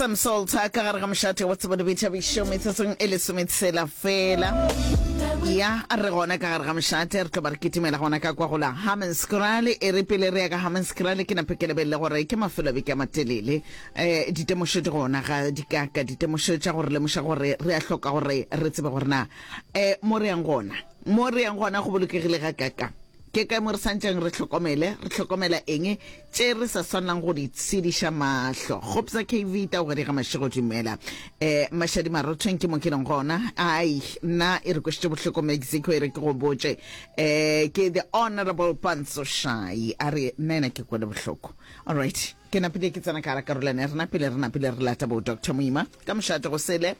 Sam Salter ka gare ga mošate wa tsebo le boithabišo metsotsong e lesometshela fela ya a re gona ka gare ga mošate re tlo ba re kitimela gona ka kwa gola hamenskrale e re pele re ya ka hamenskrale ke nape ke lebelele gore ke mafelo beke a matelele um ditemošo di gona ga di kaka ditemošo tša gore lemoša gore re a hloka gore re tsebe gore na um mo re yang gona mo re yang gona go bolokegile ga kaka Ke kae mo re santšeng re hlokomele? Re hlokomela eng tše re sa swanelang go di tshediša mahlo? Kgopsa KV tao gare ga mašego dumela. E, mašadi marothong ke mo ke leng gona. Ai, nna e re kwešitše bohloko Mexico e re ke go botše. E, ke the honorable Panso Shai a re nna ena ke kwele bohloko. All right, ke napile ke tsena ka gara karolwana ya rena pele re napile re lata bo Doctor Moima ka mošate go sele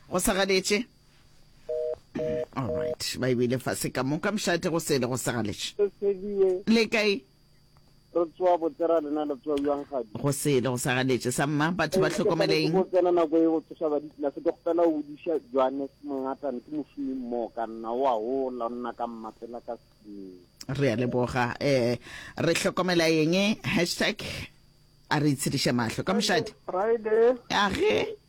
go sa galetše. all right ba ebile fase ka moka mšate go sele go segalešo le kae re tsoa botsera lena le tsoa bjang gadi go sele go segaletše sa mma batho ba tlhokomeleng go tsena nako e go tsosa ba ditla se ke go pela o diša johannes mongata ne ke mošomi mmo ka nna wa ho la nna ka mma pela ka re a leboga eh re hlokomela yeng hashtag a re itshediša mahlo ka mošadi friday a ge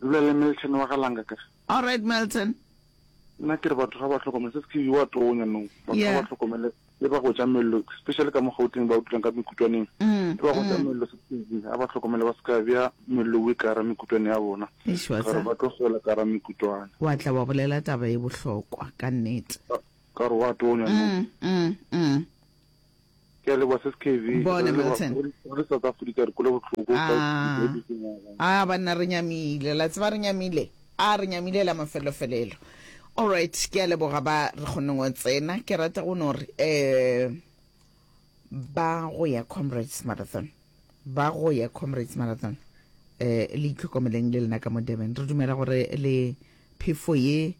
Dula le Milton wa ga Langa kere. Alright Milton. Nna kere batho ga ba hlokomele se se wa tonya no batho ga ba hlokomele le ba go ja mello especially ka mo Gauteng ba o dulang ka mekutwaneng mm, le ba go ja mm. mello se a ba hlokomele ba ska bya mello we ka ra mekutwane ya bona gore ba tlo gola ka ra mekutwane wa tla wa bolela taba e bohlokwa ka nnete ka re wa tonya no mm, mm, mm. Ke a leboga se skv Bona Milton. Re le South Africa re kwele bohloko ka Aa aa banna re nyamile la tseba re nyamile a re nyamile la mafelelo felelo alright ke a leboga ba re kgonne go tsena ke rata go no re eh ba go ya comrades marathon ba go ya comrades marathon eh le itlhokomeleng le lena ka mo Durban re dumela gore le Phefo ye,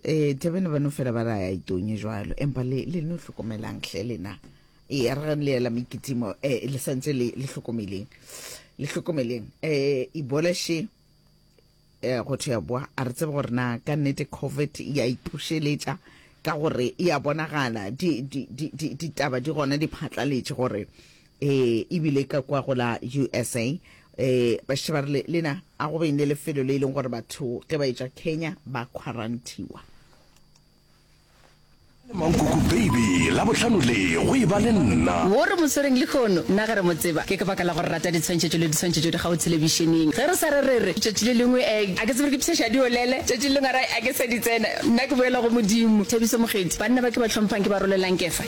e, Durban ba no fela ba ra ya itonye jwalo, empa le, le no hlokomelang hle lena. E, a re le yela mekitimo, e, le santse le, le hlokomeleng. Le hlokomeleng. E, Ibola she, e, go thwe ya boa, a re tsebe gore na ka nnete COVID ya iphušeletša, ka gore ya bonagala, di, di, di, di, ditaba di gona di phatlaletše gore Ee, e bile ka kwa go la usa. Ee, bašetše ba re le, lena, a go beng le lefelo le e leng gore batho ge ba etša Kenya ba khwaranthiwa. Le mankoko baby, labohlano le, go e ba le nna. Wo re mo swereng lehono, nna ge re mo tseba, ke ka baka la go rata ditshwantšhetšo le ditshwantšhetšo di gago thelebišeneng. Ge re sa re re re, tšatši le lengwe a a ke tsebe re di pshaša di olele, tšatši le lengwe a re a ke sa di tsena, nna ke boela go Modimo. Thabiso Mokgethi, Banna ba ke ba hlomphang ke ba rolelang kefa.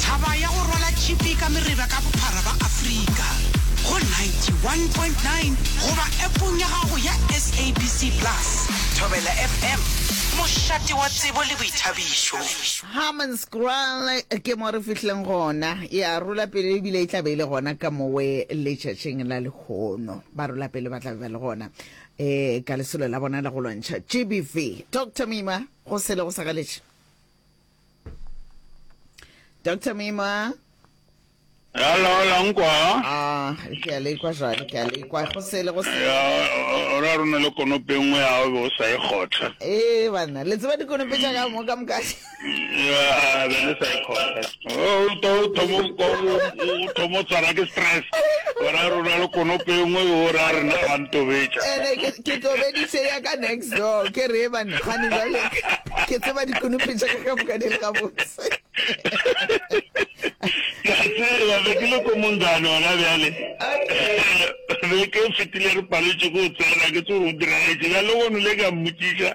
Thaba ya go rwala tšhipi ka mereba ka bophara ba Afrika go 91.9 goba appong ya gago ya SABC Plus. Thobela FM, mošate wa tsebo le boithabišo. Hammanskraal ke mo re fihleng gona, e a rola pele ebile e tla be e le gona ka mowe letšatšing la lehono. Ba rola pele ba tla be ba le gona. e ka lesolo la bona la go lwantšha gbv dr mima go sele go sagaletše dr mima Hello, Langwa. Ah, ke a le kwa jwale, ke a le kwa go sele go sele. O ra rona le konope nngwe ya o sa e khotha. Eh bana, le tseba dikonope tša ka mo ka mokasi. Nnyaa, be le sa e kgona. O to o thomo ko o thomo tsara ke stress. Ora rona le konope engwe o ra re na ga ntobetša. Ene ke ke tobeditše ya ka next door ke re ba nagane jale ke tseba dikonope tša ka ka moka di le gabotse. Ka tseba be ke le ko mongane ona bjale. Be ke fetile re paletše go tsena ke tse go diraetše. Bjale go nole ka mmotšiša.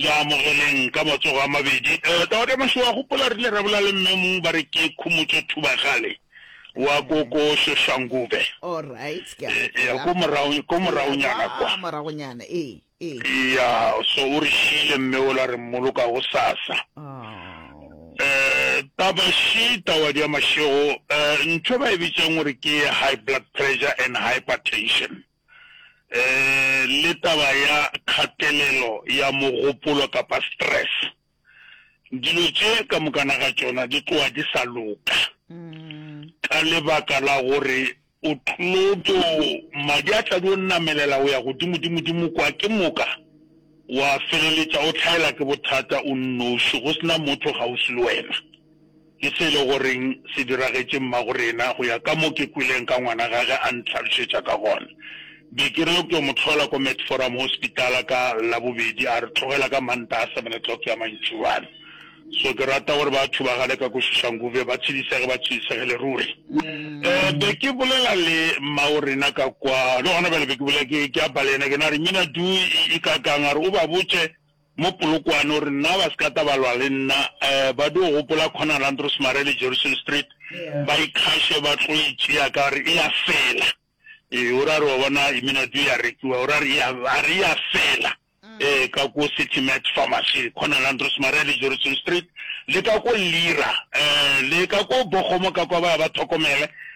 Mo amogeleng ka matsogo a mabedi. Tawada Mašoa a gopola rile ra bolela le Mme Mmu ba re ke khumotše Thubagale wa ko ko Soshangube. Alright, ke a gopola. Eya, ko morago, ko moragonyana kwa. Kwa moragonyana, ee, ee. Eya, so o re šiile Mme wola a re mmoloka gosasa. Aww. Taba še, Tawadi ya Mašego, ntho e ba e bitšang gore ke high blood pressure and hypertension. um le taba ya kgatelelo ya mogopolo kapa stress dilo tše ka mokana ga tšona di tloa di sa loka ka lebaka la gore o tlo to madi a tla di o namelela go ya godimo dimo dimo kwa ke moka wa feleletša o tlhaela ke bothata o nnoši go sena motho gaufi le wena Ke se e le goreng se diragetše mmagorena, go ya ka mo ke kweleng ka ngwana gage a ntlhalošetša ka gona. Be ke re yo ke yo mo hlola ko Medforum Hospital ka Labobedi, a re tlogela ka Mantaha seven o'clock ya mantšuana. So ke rata gore batho ba gale ka ko Soshanguve ba tšhidisege, ba tšhidisegele ruri. Eh, be ke bolela le mmagorena ka kwa, le gona bjale be ke bolela, ke, ke apa le yena, ke na re, Mmina Due e, e kakang? A re, o ba botše. Mo Polokwane o re, Nna ba se ka tla ba lwa le nna. Ba dio gopola Conal Andrews Mare le Jerison Street, ba ikgaše ba tlo e tšea ka gore e a fela. Ee, o ra re, wa bona, Iminadio e a rekiwa. O ra re, Ea, a re e a fela. Ee, ka ko City Max Pharmacy, Conal Andrews Mare le Jerison Street, le ka ko Lira, le ka ko Bogomo ka kwa, ba ya ba thokomele,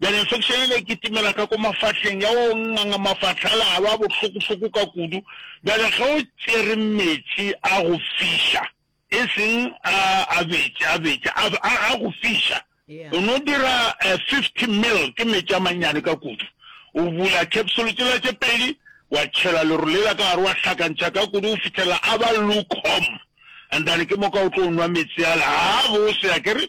Bjale infection yela e kitimela ka ko mafahleng ya o nganga mafahla a la a ba bohlokohloko ka kudu. Bjale ge o tšere meetse a go fiša, e seng a a bete, a bete, a a a go fiša, o no dira fifty mil, ke meetse a mannyane ka kudu, o bula capsule tšela tše pedi, wa tšhela leru lela ka gare, wa hlakantšha ka kudu go fihlelela a ba lukewarm, and then ke moka o tlo nwa meetse ala a bose, akere?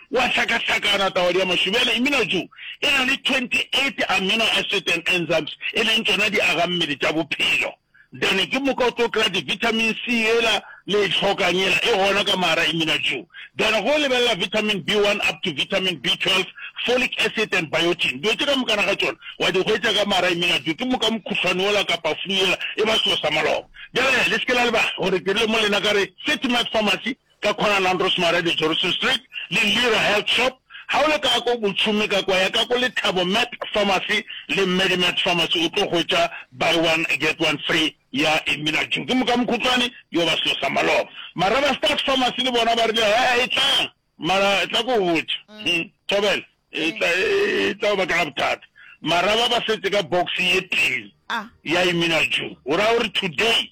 O a hlakahlakana, tawadi ya mašwi. Bjale, imina jo e na le 28 amino acid and enzymes, e leng tšona diagammele tša bophelo. Then ke moka o tlo kry-a di-vitamin C yela le e hlokang yela, e gona ka mar'a imina jo. Then go lebelela vitamin B one up to vitamin B twelve, folic acid and biotin. Dilo tše ka mokana ga tšona wa di hwetša ka mar'a imina jo. Ke moka mokhuhlwane wola kapa flu yela e ba selo sa maloba. Bjale le se ke la lebala gore ke rile mo lena ka re City Med Pharmacy ka Kgonalang Rosemary le Johnson Street, le Lira Health Shop, ga o le ka ko Botšhomi ka kwa, ya ka ko Lethabo Mart Pharmacy le Mmedi Mart Pharmacy, o tlo hwetša Buy One Get One Free ya Emina June. Ke mokamokhutswane yo ba selo sa maloba. Maraba Start Pharmacy le bona ba rile, He, e tlang, mara tla ko botša. Hum, Thobela, e tla, e tla go bakela bothata. Maraba ba setse ka box ye tee ya Emina June, go raya gore today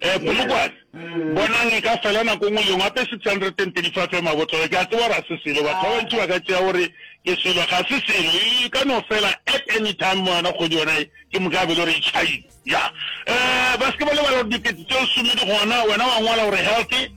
Eh, Polokwane, bonang e ka fela nako nngwe lengwe ape 635 ya mabotlolo. Ke a tseba gore a se selo, batho ba bantši ba ka tšea gore ke selo, ga se selo. E ka no fela at any time mo yona kgwedi yona e, ke moka be le gore e tšhaile. Ya. Eh, ba se ke ba lebala gore dikete tse lesome di gona, wena wa ngwala gore healthy.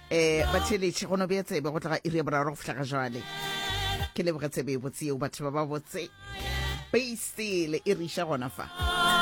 eh batheletše go no bea tsebe go tla ga iri ya boraro go fihla ga jwale ke leboge tsebe e botse yeo batho ba ba botse beisele e re iša gona fa